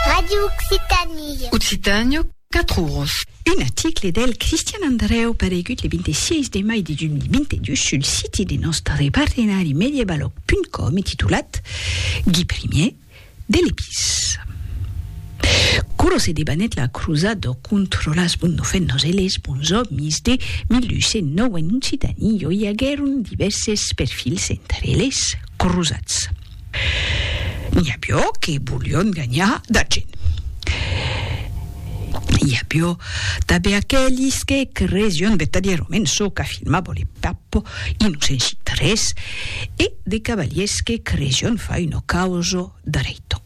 Radio Occitanie. Occitània, quatre oros. Un article del Cristian Andrèu paregut le 26 de mai de 2022 sul siti de nòstre partenari Mediebaloc.com e titulat Gui Primier, de l'Epís. Quoro se debanèt la crusada contra las bonnofennas e les bonsòmis de 1209 en Occitània i aguèron divèrses perfils entre les crusats. N'i avió que volion ganhar d'argent. N'i avió tanben aquelis que cresión vertadièrament çò qu'afirmava le Papo i non sensit res e de cavaliers que cresión far una causa dreita.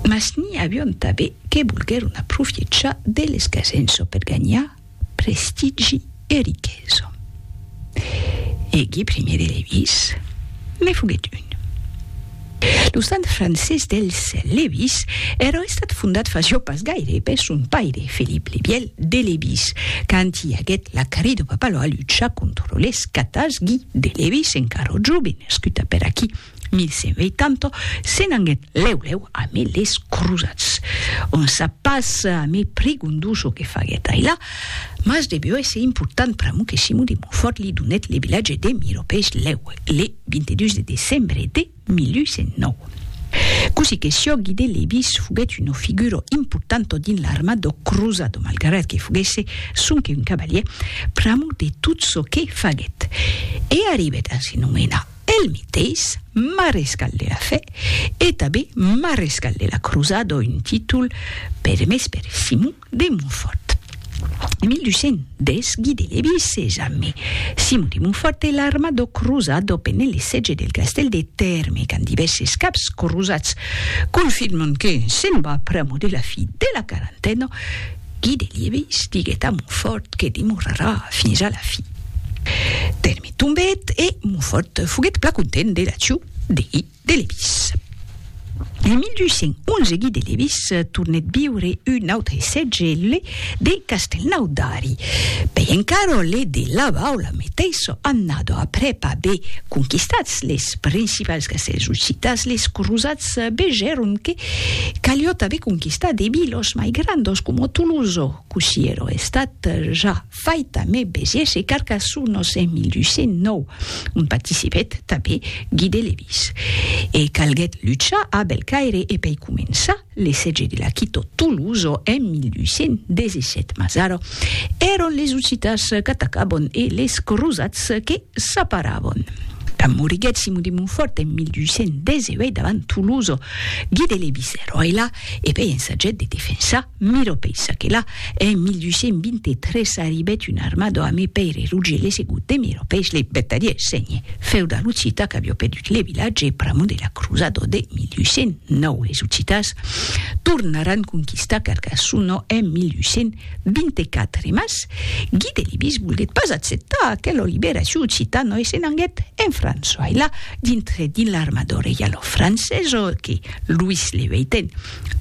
Mas n'i avión tanben que volguèron aprofiechar de l'escasença per ganhar prestigi e riquesa. Egui primier de Lewis ne foguèt un. Lo sant francés dels Lewis èra estat fondat fa jo pas gaire per son paire Felip le Vièlh de Lewis, quand i aguèt la carri de Papalòa lucha contra les catas Gui de Lewis encara jove nascut a Peraquí. 1180, se'n anguèt lèu-lèu amé les crosats. On sap pas amé Prigondu çò que faguèt ailà, mas devió èsser important pr'amor que Simon de Montfòrt li donèt le vilatge de Miropèis lèu, le 22 de decembre de 1109. Cossí que sió, Guy de Lébis foguèt una figura importanta dins l'armada crosada, malgrat que foguèsse sonque un cavalièr, pr'amor de tot çò que faguèt. E arribèt a se nomenar. El meteis marescal de la fe e tanben marescal de la crosada o un títol permés per Simon de Montfòrt. En 1210 Gui de Levís se jambe Simon de Montfòrt e l'armada crosada pene le sètge del castèl de Tèrme quand divèrses caps crosats confirman que se'n va pr'amo de la fi de la quarantena, Guy de Liebis diguèt a Montfòrt que demorarà fins a la fi. Tèrme tombèt e Montfòrt foguèt plan content de l'acciu de Guy de Liebis. En 1211 Guy de Liebis tornèt viure un autre sètge, le de Castelnau d'Ari. Pei encara le de La Baula meteissa annada aprèp aver conquistats les principals castèls occitans, les crosats vegèron que Caliot aver conquistat de vilos mai grandos coma Toloso, cossí ero estat ja fait a me besièrs e Carcassonos en 1209, ont participèt tanben Guy de Lévis. E calguèt luchar a Belcaire e pei començar le sètge de la quito Toloso en 1217. Mas ara èron les Occitans qu'atacabon e les crosats que s'aparabon. Quand moriguèt Simon de Montfòrt en 1218 davant Toloso, Guide le viceroy la e pei ensajèt de defensar Miro pei ça que la en 1223 arribèt un arma do ame Pèire Roger le segut de Miro pei le bèt a dies sègne feu da l'occita qu'avió perdut le vilatge pr'amont de la cruza do de 1809 les occitans tornaràn conquistar Carcassonno en 1800. 24 mas, Guy de Libis volguèt pas acceptar aquela liberacion occitana e se n'anguèt en França. E la, dintre dins l'armada reiala francesa que Louis le Vieiten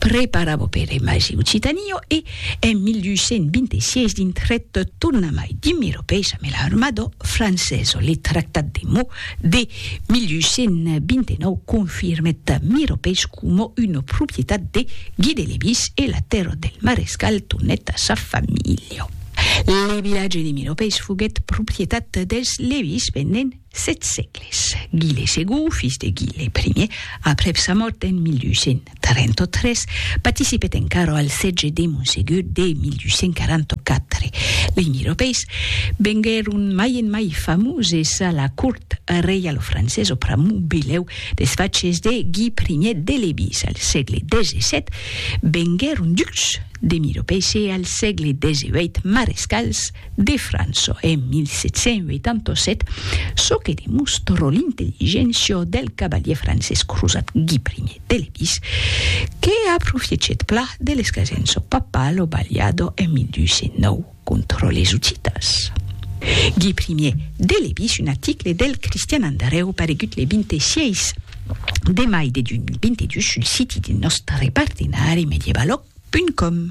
preparava per emais e Occitania e, en 1826, dintrèt tornamai dins Meropes amé l'armada francesa le tractat de Meaux de 1829 confirmèt Miropèis coma una propietat de Guy de Lévis e la tèrra del marescal tornèt a sa familha. Le vilatge de Miropèis foguèt propietat dels Lévis pendent sèt sègles. Guy le Segond, fils de Guy le Primièr, aprèp sa mòrt en 1800, 33, participèt encara al sètge de Monsegur de 1244. Lei miropeis venguèron mai en mai famoses a la cort reialofrancesa pr'amor belèu des faches de Gui I de Lebís al sègle XVII, venguèron ducs de miropeis e al sègle XVIII marescals de França en 1787, çò que demòstra l'intelligéncia del cavalièr francés crosat Gui I. de Levis, que aprofiechèt plan de l'escasenço papal o Baliado en 1209 contra les Hussitas. Gui Primier de Levis, un aticle del Cristian Andrèu paregut le 26 de mai de 2022 sul siti de nòstre partenari medievalog.com.